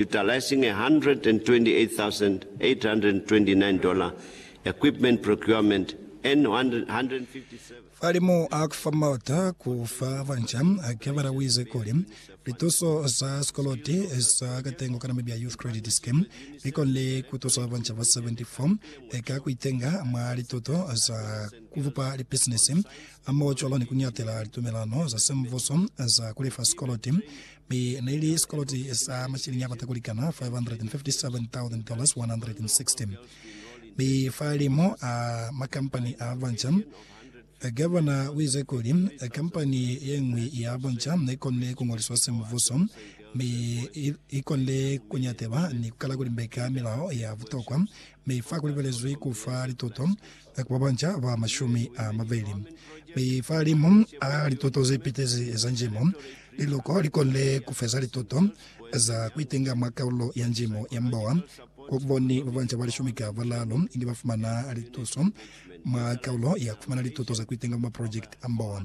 utilising $128,829 equipment procurement and $157,000. Falimu a kufa mota ku fa banca, Kevara uize kuli, Lituso za sikoloti za katengo kana mi bya Youth Credit Scheme bi konile ku tusa banca ba 74 ka ku itenga mwa lituto za ku bupa lipisinisi hamoho cwalo ni ku ñatela litumelano za semvuso za ku lefa sikoloti Mi neili sikoloti sa mashilingi akota kulikana $557,160. Mi fa limo a makampani a banja, Gavana uize kuli kampani yeñwi ya banja nekonile kungoliswa semuvhuso mi ikonile kunyatela ni kukala kulimbeka milao ya butokwa, mi fa kulibelezwi kufa lituto Ku ba banca ba mashumi a mabeli, mi fa limu a lituto ze pitezi za njimo, liluko li konile ku feza lituto za ku itenga mwa kaulo ya njimo ya mboa. Ku boni ba banca ba lishumi ka balaalu inge ba fumana lituso mwa kaulo ya ku fumana lituto za ku itenga mwa maprojekiti a mboa.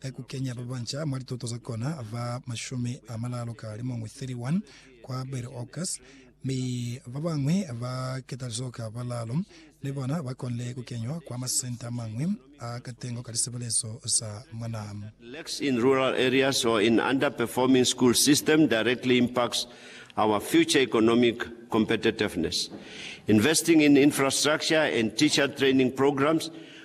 ka ku kenya ba banca mwa lituto za kona ba mashumi a malalu ka limuñwi, 31, kwa Berry Oaks, mi ba bañwi ba ketalizo ka balalu ni bona ba konile ku kenywa kwa masenta a mañwi a katengo ka lisebelezo za mwanaa. Lacks in rural areas or in underperforming school system directly impacts our future economic competitiveness. Investing in infrastructure and teacher training programs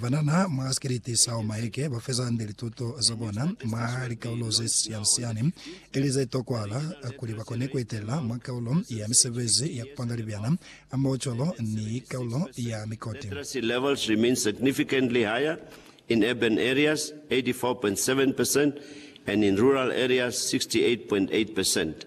Banana mwa sikiliti sa Omaeke ba feza hande lituto za bona mwa likaulo ze siani-siani ili ze tokwahala kuli ba kone ku etelela mwa kaulo ya misebezi ya ku panga libyana hamoho cwalo ni kaulo ya mikoti. Literacy levels remain significantly higher in urban areas, 84.7 percent, and in rural areas, 68.8 percent.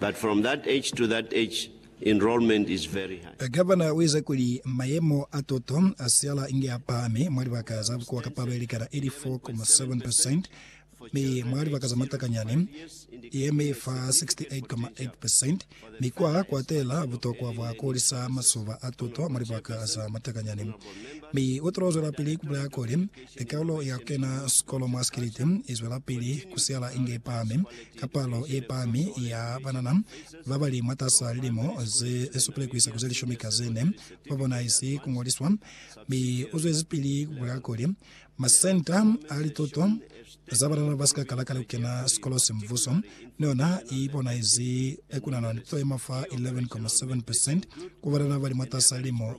But from that age to that age enrollment is very high. Governor uize kuli mayemo a tuto a siala inge a pahami mwa libaka za bukuwa ka palo yelikana 84.7 percent, mi mwa libaka za matakanyani yemi fa 68.8 percent, mi kwa kwatela butokwa bwa kuhulisa masoba a tuto mwa libaka za matakanyani. Mi utilo zwelapili kubulaya kuli, kaulo ya kukena sikolo mwa sikiliti izwelapili kusiala inge ipahami, ka palo ye pami ya banana ba ba li mwatas'a lilimo ze supile ku isa ku ze lishumi ka ze ne ba bonahezi ku ngoliswa, mi u zwezipili ku bulela kuli, Masenta a lituto za banana ba si ka kala kale ku kena sikolo se mubuso ni yona i bonahezi ku nana ni to ye maf'a 11.7 percent ku banana ba li mwatas'a lilimo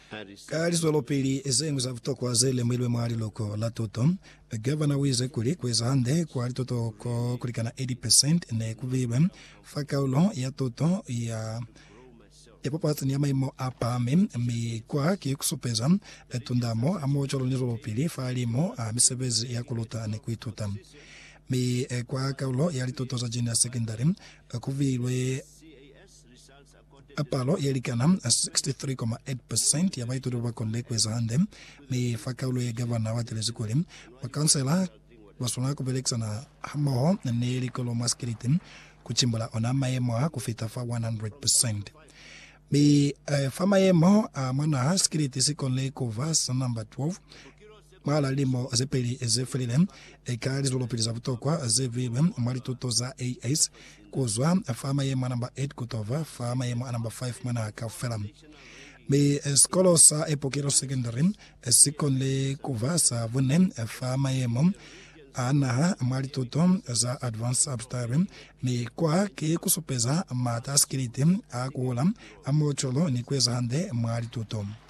Ka lizwelopili zeñwi za butokwa ze lemuhilwe mwa liluko la tuto, gavana uize kuli kueza hande kwa lituto ko kulikana 80 percent ne ku beilwe fa kaulo ya tuto ya ya papatani ya maimo a pahami, mi kwa ki ku supeza tundamo hamohocwalo ni zwelopili fa limu a misebezi ya kuluta ni kuituta. Mi kwa kaulo ya lituto za junior secondary, ku beilwe. A Palo ye likana 63,8% ya baituti ba ba konile ku eza hande, mi fa kaulo ye gavana wa talezi kuli, Bakansela ba swanela ku belekisana hamoho ni likolo mwa sikiliti ku cimbula ona mayemo a ku fita fa 100%. Mi fa mayemo a mwa naha, sikiliti si konile ku ba sa namba 12 mwahal'a lilimo ze peli ze felile. Eka lizwelopili za butokwa ze beilwe mwa lituto za AS Kuzwa fa maye mwa namba 8 kutova fa maye mwa namba 5 mwa naha kaufela. Mi sikolo sa Epokelo Secondary sikonile kuba sa bune fa mayemo a naha mwa lituto za Advanced Subsidiary, mi kwa ki kusupeza maata a sikiliti a kuhula, a muculu ni kueza hande mwa lituto.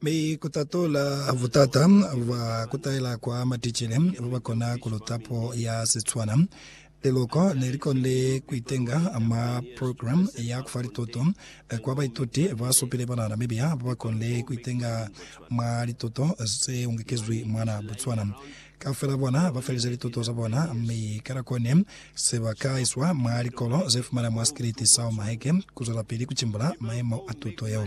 Mi ku ta tola butata bwa ku taela kwa maticele ba ba kona ku luta puo ya Setswana. Liloko ne li konile ku itenga mwa programe ya ku fa lituto kwa baituti ba supile ba na Namibia ba ba konile ku itenga mwa lituto ze ungekezwi mwana Botswana. Kaufela bona ba felize lituto za bona mi ka nako ne se ba ka iswa mwa likolo ze fumana mwa sikiliti sa Omaheke ku zwelapili ku cimbula maemo a tuto yeo.